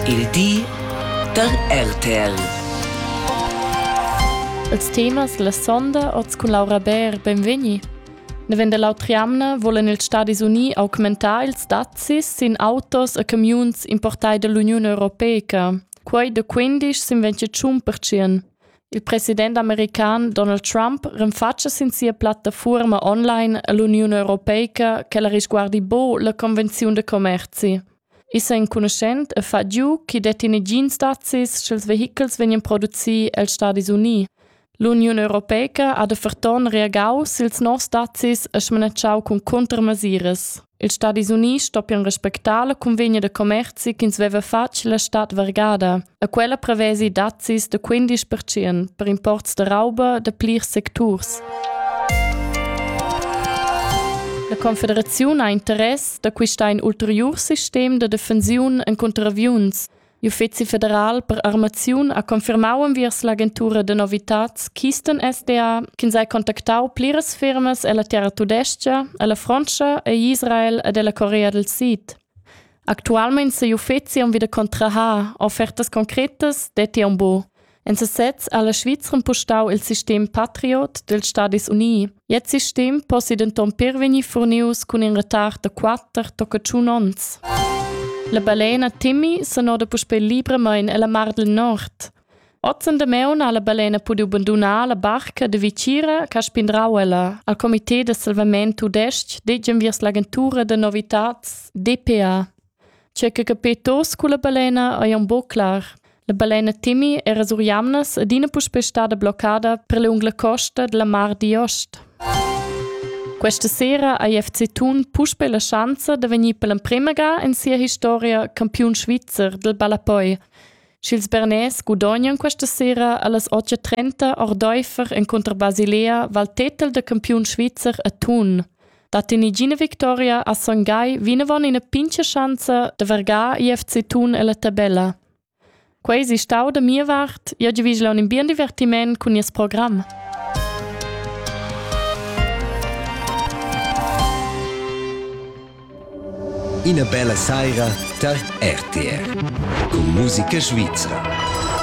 Il di da RTL. Els temas la sonda oz cun Laura Bär, benvegni. Nevend dall'autra jamna volen ils Stadis Uni augmentar ils dazis sin autos e camiuns importai dall'Uniun Europeica. Quei de 15 sin 25 percent. Il president american Donald Trump renfatscha sin sia plattafuorma online all'Uniun Europeica che la risguardi bo la Convenziun de Commerzi. Issa enconuschent e fa giu ch'i detti negins dazis sch'ils vehichels vegnan producì els Stadis Unì. L'Uniun europeica ha da ferton reagau sils nos dazis e smanatschau cun cuntermesiras. Ils Stadis Unì stoppian respectar la cunvegna da commerzi ch'ins veva fatg la stad vargada. E quella prevesi dazzis da 15% per imports da rauba da plirs secturs. La Confederaziun ha interess da quista in ulterior sistem da defensiun en contraviuns. L'Uffizi federal per armaziun ha confirmau enviers l'agentura de novitats Kisten SDA che sei contactau pliras firmas ella terra tudesca, alla Frontscha e Israel ed ella Corea del Sid. Actualmein sei uffeci aunc wieder contrahar offertas concretas detti aunc buc. En sesez ha la Svizzera impostau il sistem Patriot dels Stadis Unii. Jetzt sistem possi denton per vegnir furnius cun in retard da quatter tocca tschun onns. La balena Timmy sonoda puspei libramain ella Mar del Nord. Hoz in damaun ha la balena pudü bandunar la barca da vicira ch'ha spindrau ella al comité da salvament tudais-ch ded inviers l'agentura da novitats DPA. Tgei che capir tos culla balena ei aunc buc clar. La balena Timmy era sur jamnas adina puspè stada bloccada per lunga costa dalla mar d'ost. Questa sera ha FC Thun puspè la schanza da vegnir per l'emprema ga in sia historia campiun svizzer del ballapoi. Sch'ils Bernais gudognan questa sera allas 8.30 ordaifer encunter Basilea val tetel da campiun svizzer a Thun. Dat in igina victoria a Son Gai vinavon ina pincha schanza da vergar IFC Thun ella tabella. Quei si stau da mia vart, io giavigla un bien divertiment cun nies program. Ina bella saira tar RTR cun musica svizra.